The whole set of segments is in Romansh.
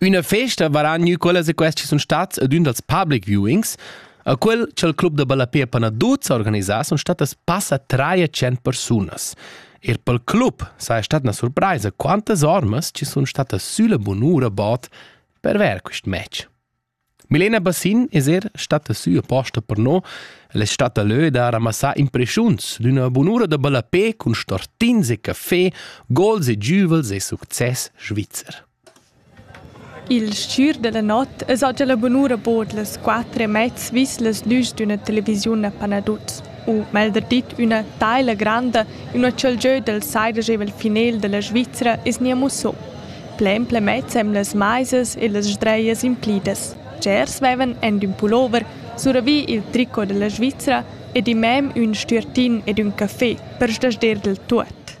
Üna festa varan gnü quellas e quests chi sun stats ad ün dals public viewings, a quel cha'l club da ballapè Panaduz ha organisà sun stattas passa traia tschient persunas. Ir pel club saja stat üna surpraisa quantas ormas chi sun statas sülla bunura bod per vair quist match. Milena Bassin es eir statta sü aposta per no. El es statta lö da ramassar impreschiuns d'üna bunura da ballapè cun stortins e caffè, gols e giüvels e success svizzer. Il s-chür da la not es oggi la bunura bod las quatter e mez vis las lüs d'üna televisiun a Panaduz. u meglder dit üna taila granda, üna chalgieu dal saidegevel finel da la Svizra es gnir mussò. Plain plemezza amb las maisas e las sdreias implidas. Tschers vevan ent ün pullover suravì il tricot da la Svizra ed immem ün stüertin ed ün café per sdasder del tuot.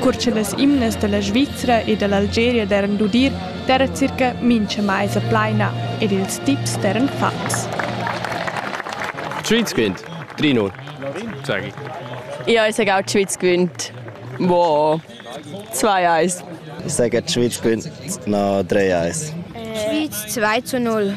Cur che las imnas da la Svizra e da l'Algeria daran d'udir, d'era circa mincha maisa plaina ed ils tips d'eran fats. Tschüts quint, Trinur. Sagi. Io ais egau tschüts quint. Wow. Zwei Eis. Sega tschüts quint, na drei Eis. Tschüts zwei zu null.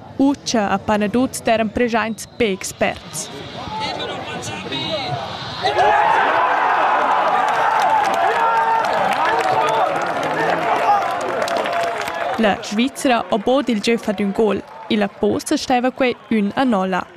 Utscha a Panaduz d'eran preschaints be experts. La Svizra ho bod il gieu fat ün gol, illa posta staiva quai ün a nolla.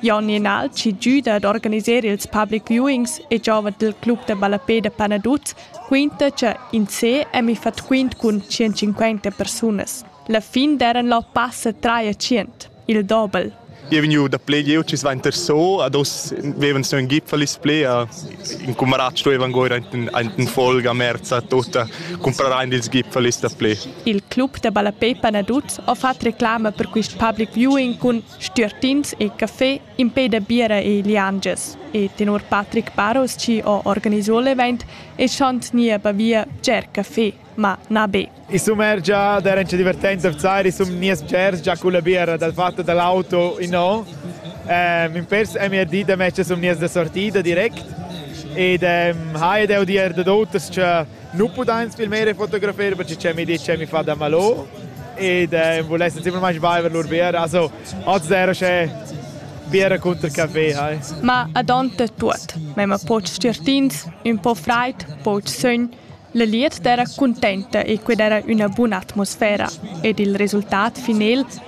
Jon Nenal chi güda ad organiser ils public viewings e giova dal club da ballapè da Panaduz quinta cha in se è mi fat quint cun 150 persunas. La fin d'eran là passa traia tschient, il dobel. Io vegniu da play, io ci svainter so, ad os vevan so in gipfel is play, in cumarat stuevan goir in folga merza tota comprare ils gipfel is da play. Il club da ballapè Panaduz ho fat reclama per quist public viewing cun Stüertins e caffè impè da biera e liangias e tenor Patrick Baros chi ho organiso l'event eschan tgni a Bavia bger caffè, ma na be. I sumergia d'eran cha divertenza vzar, i sun gnias bgers già culla biera dal fat da l'auto innò. Ehm ün pers ha mia dit da mezcha sun gnias da sortida direct ed ehm haja deu dir dad oters cha nu pudains filmar e fotografar perche cha mi dit cha mi fa da malò ed eh, vulessan simplamaing baiver lur biera. Also, oz era sche biera cunter café, hai. Ma ad ont de tuot. Mema poch certins, ün po fraid, poch sögn. La liet d'era contenta e qued era üna buna atmosfera ed il resultat final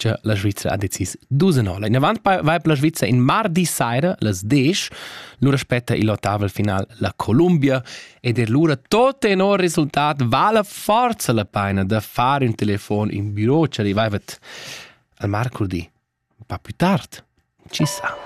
cha la Svizra ha decis dus en orla. Inavant vaibla Svizra in mardi saira, las 10, lura spetta il ottavel final la Columbia ed er lura tot tenor resultat vala forza la paina da far un telefon in büro ci arrivaivat al marcurdi un po' più tard. Ci sa.